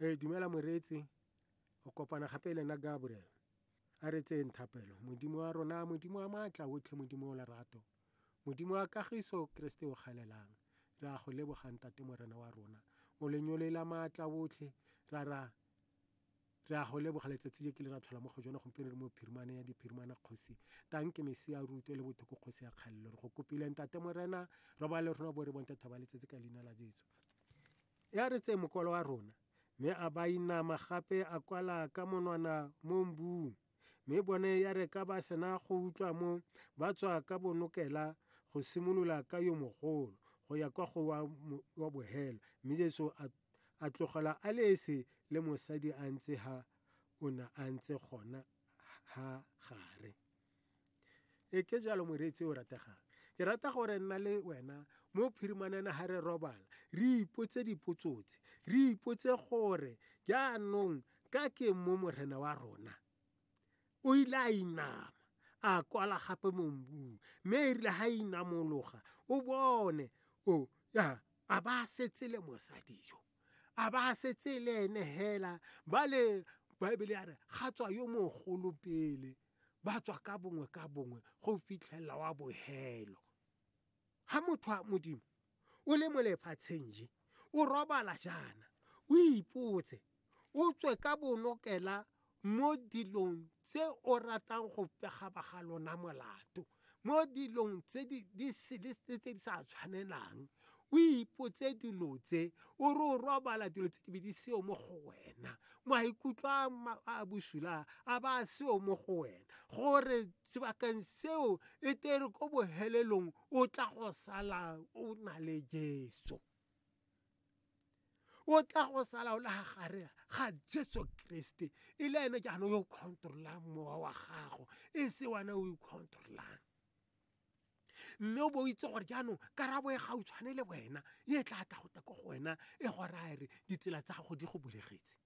ee dumela moreetsi o kopana gape le nna gabriel a re tseyeng thapelo modimo wa rona modimo wa maatla otlhe modimo o lerato modimo wa kagiso keresete o galelang re a go lebogang tate morena wa rona o lenyolela maatla otlhe ra ra re a go leboga letsatsi je ke le ra tlhola mo go jone gompieno re mo phirimane ya diphirimana kgosi tang ke mesi ya ruto le bothoko kgosi ya kgalelo re go kopile ntate morena re ba le rona bo re bonte thaba letsatsi ka leina la jesu ya re tseye mokolo wa rona mme a ba inama gape a kwala ka monwana mo mbung mme bone ya re ka ba sena go utlwa mo ba tswa ka bonokela go simolola ka yo mogolo go ya kwa go wa bohelo mme Jesu a a tlogela a le ese le mosadi a ntse ha o ne a ntse gona ha gare e ke jalo moreetsi o rategang ke rata gore nna le wena mo phirimanana ga re robala re ipotse dipotsotse re ipotse gore jaanong ka ke mo morena wa rona o ile a inama a kwala gape mo mbung mme e rile ga inamologa o bone o ya a ba setse le mosadi yo a ba setse le ene hela ba le baebele ya re ga tswa yo mogolo pele ba tswa ka bongwe ka bongwe go fitlhelela wa bohelo ga motho wa modimo o le mo lefatsheng je o robala jaana o ipotse o tswe ka bonokela mo dilong tse o ratang go pegaba ga lona molato mo dilong tse di di sele tse tse di sa tshwanelang o ipotse dilo tse o re o robala dilo tse di be di seo mo go wena maikutlo a ma- a bosula a ba a seo mo go wena gore sebakeng seo e tere ko bohelelong o tla go sala o na le jesu o tla go sala o le ga gare ga jesu keresete e le ene jaanong yo o controlang mowa wa gago e se wana o icontrolang mme o bo o itse gore jaanong karabo e gautshwane le wena e tla tla go ta ko go wena e go raya re ditsela tsa gago di go bulegetse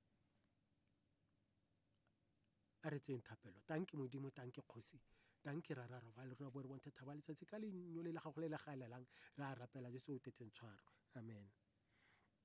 a re tseyeng thapelo tang ke modimo tang ke kgosi tang ke rara re ba le rona bo re bonthe thaba letsatsi ka lenyole la gago le le galelang re a rapela jeso o tetseng tshwaro amen